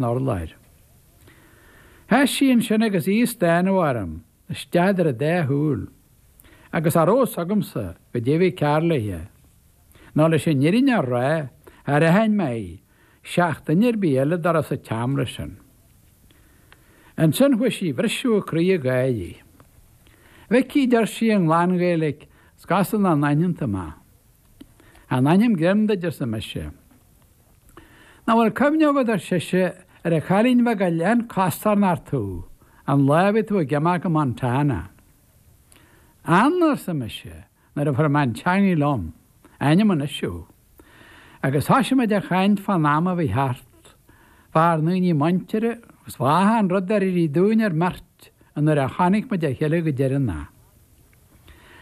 'nár láthair. Sheas sí ansin agus í ag stánadh orm isteach idir an dá shúil, agus cha rabh fhios agamsa goidé a bhí cearr léithe, nó leis an fhírinne a rá, char aithin mé í, seach duine ar bith eile dá raibh sa tseamra sin. Ansin chuaigh sí ag briseadh a croí ag gáirí. 'Mhicí, a deir sí i nglan-Ghaeilic, is cosúil nach n-aithníonn tú mé. 'Chan aithním greim duit, arsa mise. 'Ná bhfuil cuimhne agat, ar sise, ar an chailín bheag a lean costarnocht thú, an lá a bhí tú ag imeacht go Montana? 'Anna, arsa mise, nuair a fuair mé an teangaidh liom, 'aithním anois thú. Agus thoisigh muid a chaint fán am a bhí thart, fár ndaoine muinteartha, agus fá achan rud ar éirigh dúinn ár mbeirt ón uair a chonaic muid a chéile go deireanach.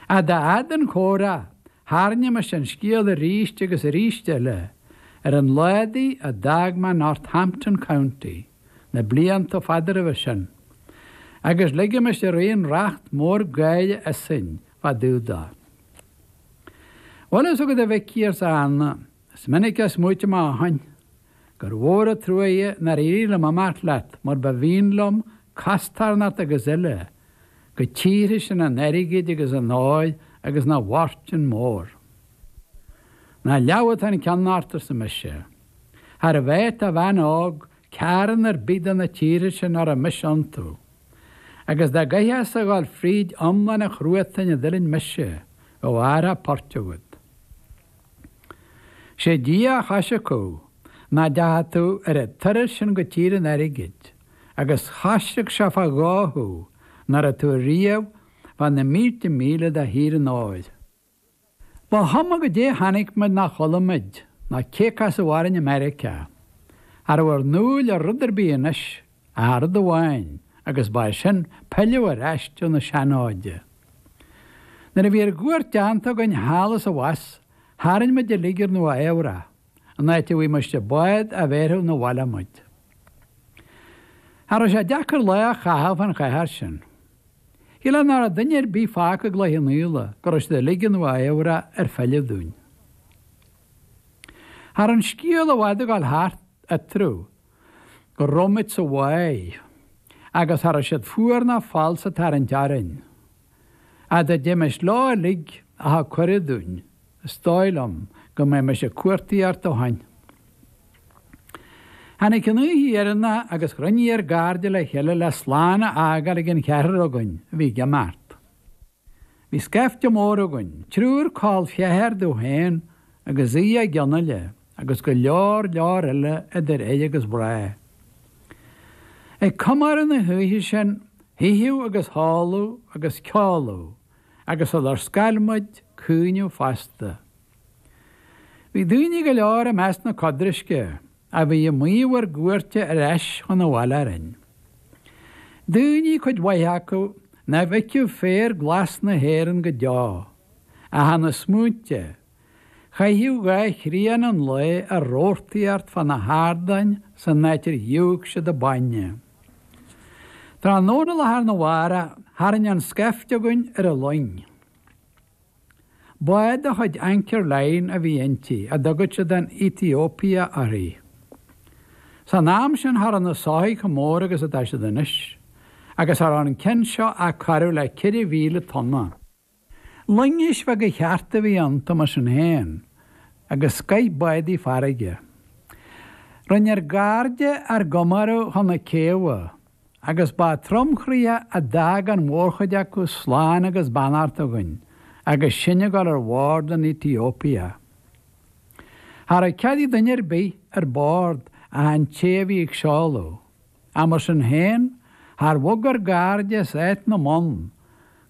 'Ach dá fhad an comhrá, Tharraingimis an scéal arís agus arís eile ar an lá údaí a d'fhág mé Northampton County na blianta fada roimhe sin, agus ligimis araon racht mór gáire asainn fá dtaobh dó. Bhfuil fhios agat a Mhicí, arsa Anna, Is minic a smaoitim ó shin, gur mhór an truaighe nár éirigh liom imeacht leat mar ba mhian liom, costarnocht agus uile, go tíortha sin an airgid agus an óir agus na bhfortún mór. Nach leamh atá an ceann ort, arsa mise. Charbh áit do bhean óg ceárn ar bith de na tíortha sin a raibh mise iontu. Agus dá gcaithfeá-sa a dhul fríd iomlán an chruatain a d'fhuiling mise, bheadh athrach poirt agat, Sé Dia a choisric thú, ná deachaidh tú ar a' turas sin go tír an airgid, agus choisric sé fá dhó thú, ná raibh tú riamh fá na mílte míle de thír an óir. Ba chuma goidé chonaic muid ná chuala muid, ná cé a casadh orainn i Meiriceá, cha rabh ár ndúil i rud ar bith anois Ach rud amháin, agus ba é sin pilleadh ar ais do na seanfhóide. Nuair a bhí ár gcuairt deánta againn thall is abhus, tharraing muid uilig ar Nua Eabhrac, an áit a bhfuighimist bád a bhéarfadh 'na bhaile muid. Cha rabh sé deacair lá a chaitheamh fan chathair sin. Shílfeá ná rabh duine ar bith fágtha i gCloich Cheann Fhaola go rabh siad uilig i Nua Eabhrac ar philleadh dúinn. Cha rabh an scéal i bhfad ag gabháil thart eatarthu rabh muid sa bhaile agus cha rabh siad fuar ná falsa ag tarraingt orainn. Dá dtéimis leo uilig a thug cuireadh dúinn, is dóigh liom go mbeimis ag cuartaíocht ó shoin. Tháinig an oíche dheireanna agus chruinnigh ár gcairde le chéile le slán a fhágáil ag an cheathrar againn a bhí ag imeacht. Bhí scaifte mór againn, triúr col ceathar domh féin agus Aodh Mag Fhionnaile agus go leor leor eile idir fhir agus mhná ag comóradh na hoíche sin. hItheadh agus hóladh agus ceoladh agus sular scar muid, caoineadh fosta. Bhí daoine go leor i measc na codraisce. a bhí ag maíomh ár gcuairte ar ais chun an bhaile orainn. Daoine, cuid mhaith acu, nach bhfeicfeadh féar glas na hÉireann go deo, ach ina smaointe a chaithfeadh dhá thrian an lae ar rabhartaí thart fá na hardáin san áit ar dhiúl siad an bainne. Tráthnóna lá thar na mhárach, tharraing an scaifte againn ar an loing. Bád de chuid Anchor Line a bhí inti, a dtugann siad an Ethiopia uirthi. San am sin cha rabh na soithigh chomh mór agus atá siad anois, agus cha rabh an ceann seo ach corradh le 4,000 tonna. Loingis bheaga chearta a bhí iontu mar sin féin, agus scoith bádaí farraige. Rinne ár gcairde ár gcomóradh chun na céibhe. agus ba tromchroíoch a d'fhág an mhórchuid acu slán agus beannacht againn agus sinn ag dul ar bhord an Ethiopia. Cha rabh cead ag duine ar bith ar bord ach an té a bhí ag seoladh, ach mar sin féin, char bhog ár gcairde as áit na mbonn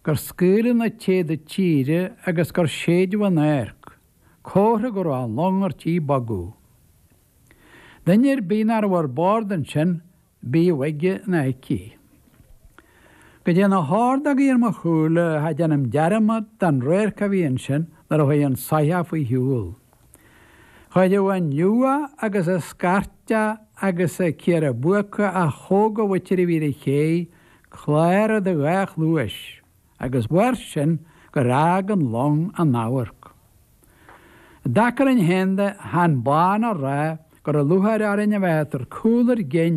gur scaoileadh na téada tíre agus gur séideadh an adharc, comhartha go rabh an long ar tí bogadh. Duine ar bith nach rabh ar bord ansin, bíodh aige nó aici. Go dté na hordógaí ar mo shúile cha déanaim dearmad den radharc a bhí ansin nuair a chuaigh an soitheach faoi shiúl. Chuireadh an liúgha agus an scairteadh agus an ciara buaca a tógadh uait roimh fhir a chéidh cladhaire do dhá chluais agus mhair sin gur fhág an long an amharc. I dtaca linn féin de, chan amháin a rá go raibh lúcháir orainn a bheith ag tabhairt cúl ár gcinn,